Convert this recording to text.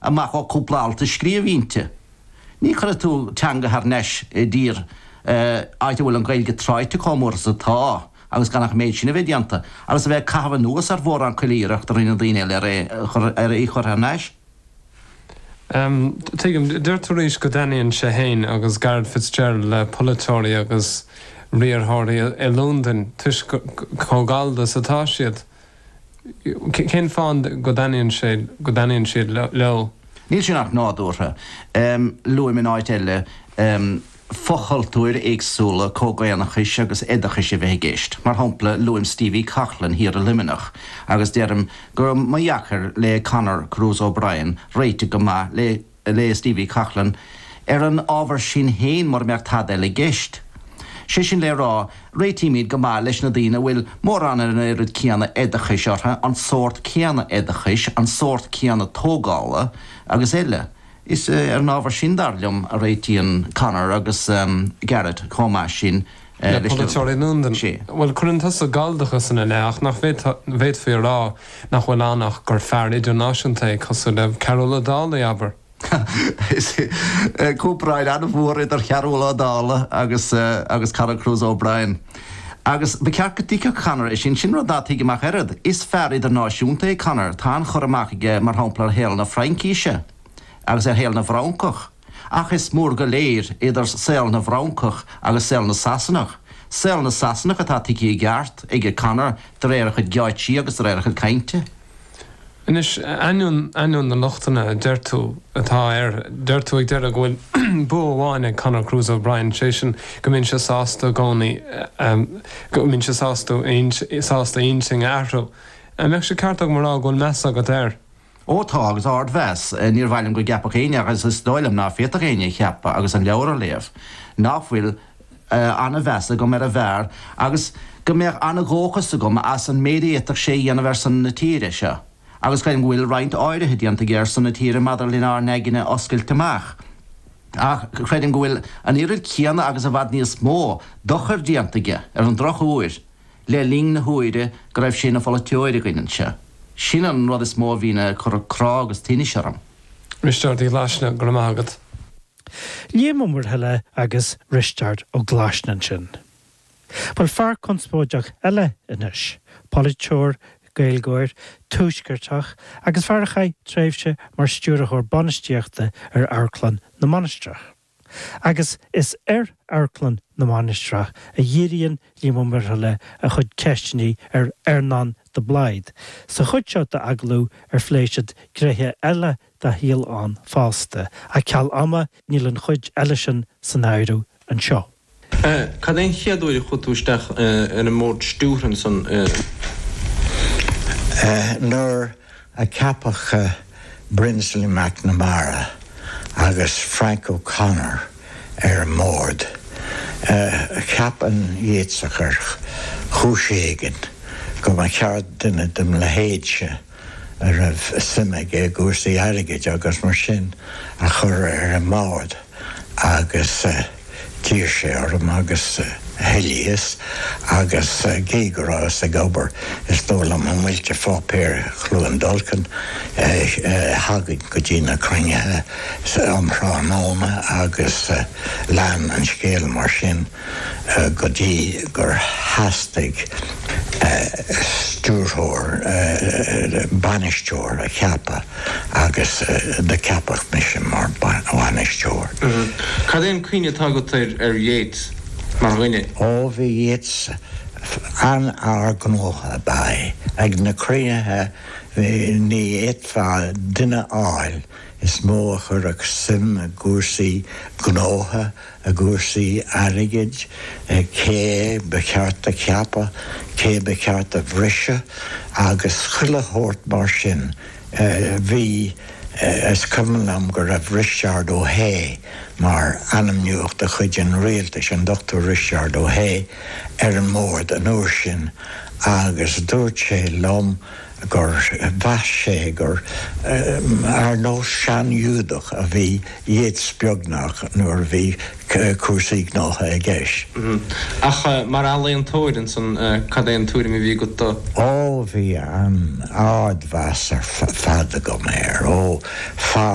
amach ó chúpla alt a scríobh inti. Ní chuirfidh tú teanga thar n-ais i dtír áit a bhfuil an Ghaeilge tráite chomh mór is atá agus gan ach an méid sin a bheith déanta agus a bheith ag caitheamh anuas ar mhórán chuile iarracht a rinne daoine eile ar í a chur thar n-ais. Tuigim. Deir tú arís go dtaitníonn sé féin agus Garret Fitzgerald le polaiteoirí agus riarthóirí i Londain toisc chomh gallda is atá siad. Cén fáth go dtaitníonn sé, go dtaitníonn sé leo? Níl sin ach nádúrtha. Luaim in áit eile fochultúir éagsúla comhdhaonnachta agus oideachais a bheith i gceist. Mar shampla, luaim Stevie Coghlan thiar i Luimneach agus deirim go raibh ba dheacair le Conor Cruise O'Brien réiteach go maith le le, le Stevie Coghlan, ar an ábhar sin féin, mura mbeadh tada eile i gceist. Sé sin le rá, réitímid go maith leis na daoine a bhfuil, mórán an oiread céanna oideachais orthu, an sórt céanna oideachais, an sórt céanna tógála, agus eile. Is ar an ábhar sin, dar liom, a réitíonn Conor agus Garret chomh maith sin. le polaiteoirí i Londain. Bhuel, cuireann tusa galldachas ina leith, ach nach bhféadfaí a rá nach bhfuil ann ach gur fear idirnáisiúnta é, cosúil le Cearúll Ó Dálaigh, abair? Tá bearna an-mhór idir Chearúll Ó Dálaigh agus Conor Cruise O'Brien. Agus ba cheart go dtuigfeadh Conor é sin. Sin rud ná tuigim ach oiread. Is fear idirnáisiúnta é Conor. Tá an-chur amach aige, mar shampla, ar shaol na Fraincise agus ar shaol na bhFrancach. Ach is mór go léir idir saol na bhFrancach agus saol na Sasanach, saol na Sasanach atá tuigthe i gceart ag Conor de réir a chuid geáitsí agus de réir a chuid cainte. Anois, ainneoin, ainneoin na lochtanna a deir tú atá air, deir tú ag deireadh go bhfuil bua amháin ag Conor Cruise O'Brien, sé sin go mbíonn sé sásta i gcónaí, go mbíonn sé sásta a intinn a athrú. An mbeadh sé ceart agam a rá go bhfuil meas agat air? Ó tá, agus ardmheas, níor mhaith liom go gceapfadh éinne, agus is dóigh liom ná féadfadh éinne a cheapadh ach an leabhar a léamh, ná fuil an-mheas agam ar an bhfear agus go mbeadh an-dhóchas agam as an méid a fhéadfadh sé a dhéanamh ar son na tíre seo, agus creidim go bhfuil roinnt áirithe déanta aige ar son na tíre maidir lenár n-aigne a oscailt amach. Ach creidim go bhfuil an oiread céanna agus i bhfad níos mó dochair déanta aige, ar an drochuair, le linn na huaire go raibh sé ina pholaiteoir againn anseo. Sin an rud is mó a bhíonn ag cur crá agus tinnis orm. A Risteáird Uí Ghlaisne, go raibh maith agat. Liam Ó Muirthile agus Risteárd Ó Glaisne ansin. Bhuel, fear conspóideach eile anois, polaiteoir, Gaeilgeoir, tuaisceartach agus fear a chaith tréimhse mar stiúrthóir bainistíochta ar Amharclann na Mainistreach. agus is ar Amharclann na Mainistreach a dhíríonn Liam Ó Muirthile a chuid ceisteanna ar Earnán de Blaghd sa chuid seo d'agallamh ar phléigh siad gnéithe eile dá shaol ann fosta, ach ceal ama níl an chuid eile sin san áireamh anseo. A, Cad é an chéad uair a chuaigh tú isteach ar an mBord Stiúrtha ansan? A, Nuair a ceapadh Brinsley McNamara agus Frank O'Connor ar an mBord, cheap an Yéatsach ar chúis éigin go mba cheart duine de mo leithéidse, a raibh suim aige i gcúrsaí airgid agus mar sin, a chur ar an mbord agus d'iarr sé orm agus thoilíos agus cé go rabhas ag obair is dóigh liom i Muilte Pháipéir Chluain Dolcain thagainn go dtí na cruinnithe um thráthnóna agus lean an scéal mar sin. go dtí gur theastaigh stiúrthóir, bainisteoir a cheapadh agus do ceapadh mise mar bhainisteoir. Cad é an cuimhne atá agat ar Yeats mar dhuine? Ó, bhí Yeats an-fhear gnótha ab ea é. Ag na cruinnithe ní fhéadfá duine a fháil is mó a chuirfeadh suim i gcúrsaí gnótha, i gcúrsaí airgid, cé ba cheart a cheapadh, cé ba cheart a bhriseadh agus chuile shórt mar sin. Bhí, is cuimhin liom go raibh Risteárd Ó hAodha mar ainmniúchán de chuid an rialtais, an Dr. Risteárd Ó hAodha, ar an mbord an uair sin agus dúirt sé liom, gur mheas sé gur ar nós sean-Ghiúdach a bhí Yeats beagnach nuair a bhí cúrsaí gnótha i gceist. Ach mar ealaíontóir ansan, cad é an tuairim a bhí agat de? Ó, bhí an-ardmheas ar fad agam air ó